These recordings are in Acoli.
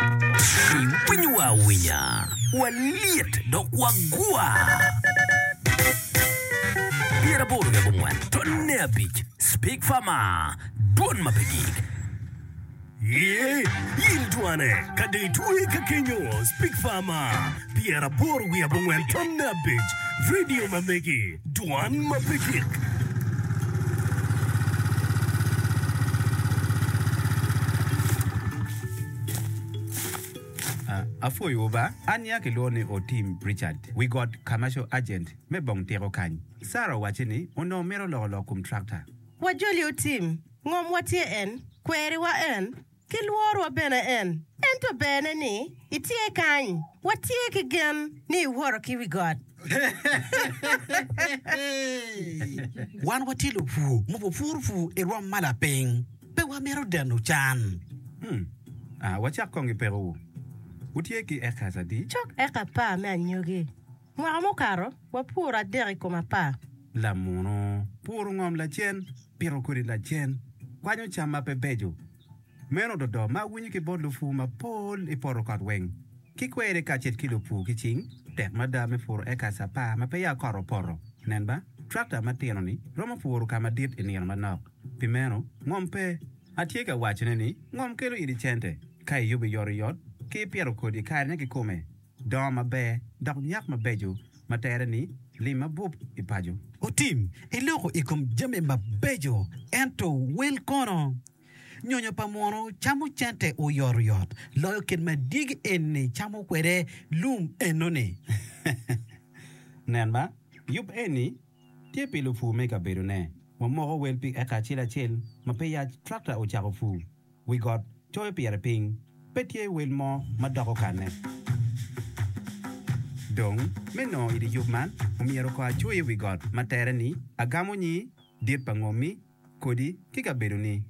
Iwinyo wa awinya, walyet dok wagwar. Pyera aboro ki abongwen tonne abic Speak Farmer Dwon ma pe gik Ye yil dwane ka de itwe ka kenyo Speak Farmer Pyera aboro wiye abongwen tonne abic Radio ma megi Dwan ma pe gik Apwoyowu ba. An ya kilwongo ni Otim Richard, wi got Commercial Agent me bong tiko kany. Sarah owacci ni onongo mito loko lok kum tractor. Wajoli Otim, ngomwa tye en, kweriwa en, ki lworwa bene en. Ento berne ni itye kany. Watye ki gen ni iwoto ki wi got. Wan watye lupur ma wapuro pur i rwom ma lapiny. Pe wamito deno can. Hmm. Ah, wacak kong ki pekowu. Wutye ki acres adi? Cok eka apar me anyogi. Mwaka mukato, wapuro adek i kom apar. Lamuno, puro ngom lacen, pito kodi lacen, kwanyo cam ma pe beco, Meno dodo ma awinyo ki bot lupur mapol i poto kot weng ki kweri kacel ki lupur ki cing, tek mada me puro ekas apar ma peya kot opoto. Nen ba, trakta matino-ni romo puro ka madit i nino manok. Pi meno, ngom pe. Atye ka wacone ni ngom kelo iri cente ka iyubo i oryot ki ipito kodi i karene kikome. Dongo maber dok nyak mabeco ma tere ni lim mabup i paco. Otim iloko i kom jami mabeco ento wel kono? Nyonyo pa muno camo cente oyotoyot loyo kit ma dyegi eni camo kwede lum enoni. Nen ma, yub eni tye pi lupur me i kabedone. Wamoko wel pi eka acel acel ma pe yaj trakta ocako pur. wi got coyo pire piny, pe tye wel mo ma dok okanne. Dong, me nongo i dye yub man, omyero oko acoyo i wi got ma tere ni Agamo Nyi Dit pa Ngommi, Kodi, ki Kabedoni.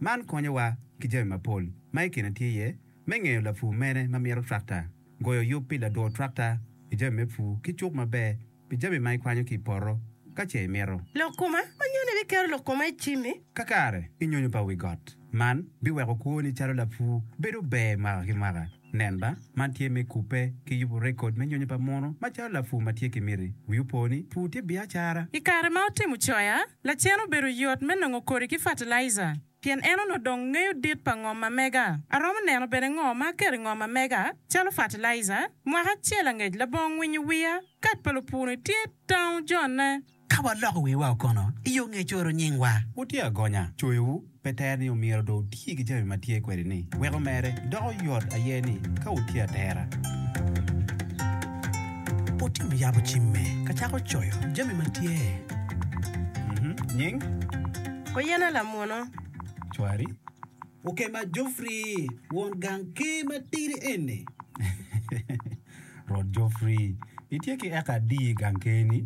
Man konyowa ki jami mapol ma i kine tye iye me ngeyo lapur mene ma mito trakta, goyo yub pi ladur trakta i jami me pur ki cuk maber, pi jami ma ikwanyo ki i poto, ka ce imito. Lok koma, ma nyuto ni biketo lok koma i cimmi. Kakare i nyonyo pa wi got. Man biweko kwoni calo lapur bedo ber mwaka ki mwaka. Nen ba, man tye me kubbe ki yubo rekod me nyonyo pa muno ma calo lapur ma tye ki miti. Wi opo ni, pur tye biacara. I kare ma otimo coya, lacen obedo yot me nongo kodi ki fatalaija. pien en onongo dong ngeyo dit pa ngom ma mega. Aromo neno bene ngo ma aketo i ngom ma mega, calo fertilizer. Mwaka acel angec labongo winyo wiya, kat pa lupuni tye tango jonne. Ka waloko wiwa o kono i yo ngec oro nyingwa. Wutye agonya, coyowu pe tero ni omyero do wuti ki jami ma tye kwede ni, wek omere. Doko yot aye ni ka wutye atera. Wutimo yabo cimme ka cako coyo jami ma tye nying. Kuyena lamwono. Cwari okema Jofri won gang ker matidi eni. Rwot Jofri, itye ki eka adi i gang ker-ni?